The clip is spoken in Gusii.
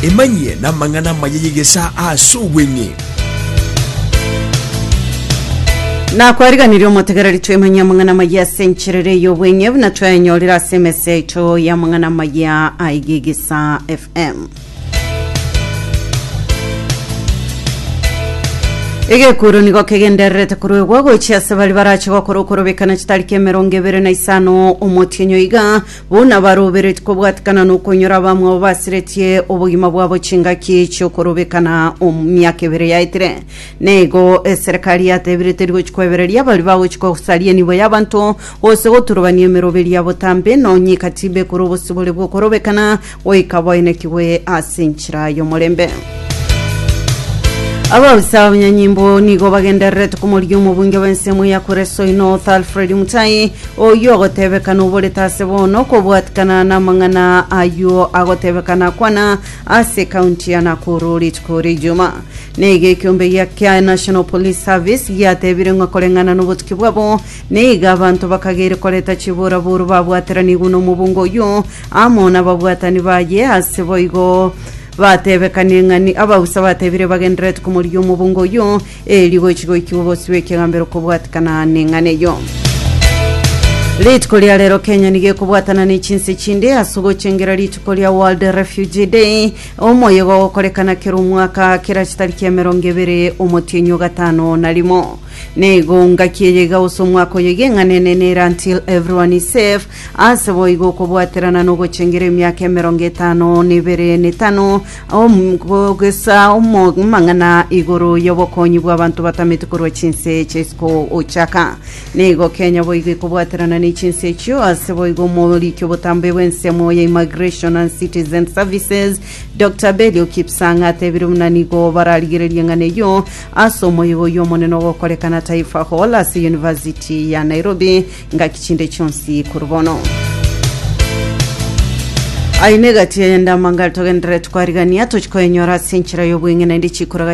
Emanyie namang'ana amaya y'egesaa ase obweng'e. Nakwariganirie omotegereri twemanyie amang'ana amaya ase encherera ey'obweng'e buna twayanyorire ase emese yaito y'amang'ana amaya aiga egesaa FM. Egekuro nigo kegendererete koruegwa gochia ase bari barache gokora okorobekana chitari k'emerongo ebere na isano omotienyo iga Buna baroberetie kobwatikana nokonyora abamwabo basiretie obogima bwabo chingaki chiokorobekana omu miaka ebere yaetire, naigo eserekari yatebire teri gochi kwebereria baria bagochi kosaria enibo y'abanto, gose goturubania emeroberio ya botambe, nonye eka tibe ekora obosibore bw'okorobekana, goika bainekigwe ase enchera y'omorembe. Abaoisa b'abanyanyimbo nigo bagendererete komoria omobunge bw'ensemo ya Kuresoi North Alfred Mutai oyio ogotebekana oborete ase bono kobwatikana n'amang'ana ayio agotebekana akwana ase kaunti ya Nakuru rituko ria Ijuma. Neiga ekiombe gia kia National Police Service giatebire ng'a koreng'ana nobotuki bwabo neiga abanto bakageire koreta chiboraboru babwateranigwe nomobunge oyio amo nababwatani baye, ase boigo batebekanie ng'a ni abausa batebire bagendererete komorigia omobunga oyio, erio gochi goikigwa obosio bw'ekegambero kobwatikana neng'ana eyio. Rituko ria rero Kenya nigo ekobwatana ne chinsa echinde ase ogochengera rituko ria World Refugee Day, omoyega ogokorekana kera omwaka kerachi tariki emerongo ebere omotienyi o gatano na rimo. Nigo ngaki eye iga gose omwaka oyo iga eng'ana enene ere until everyone is safe, Ase boigo okobwaterana nogochengera emiaka emerongo etano nebere netano omogesa omong'ang'ana igoro y'obokonyi bw'abanto batameti korwa chinse eche isiko ochaka nigo kenya boigo ikobwaterana ne chinse echio ase boigo omoriki obotambe bw'ensemo ya immigration and citizen services dr belio kipsang atebire buna nigo bararigererie ng'ana eyio ase omoigo y'omonene ogokorekana taifa hall ase university ya nairobi Ngaki chinde chionsi korwa bono. Aine gati ende amangare togendere twarigania tochikoenyora ase enchera y'obweng'e naende chikoraga